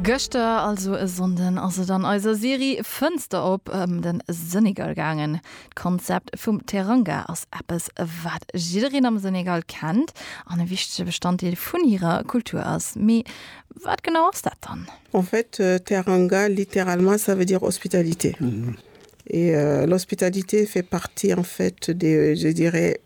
Gëschter, also e Sonnden, ass et an eiser Serie Fënster op ëm de Senegal gaangen. D'Konzept vum Teranga ass eppes, wat jiddereen am Senegal kennt an e wichtege Bestanddeel vun hirer Kultur ass. Mee wat genau ass dat dann? En fait, Teranga, littéralement, ça veut dire hospitalité. Et l'hospitalité fait partie, en fait, des, je dirais,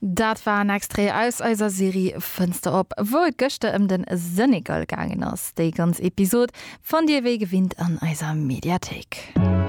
Dat war en Extrait aus eiser Serie Fënster op, wou et gëschter ëm den Senegal gaangen ass. Déi ganz Episode fannt Dir wéi gewinnt an eiser Mediathéik.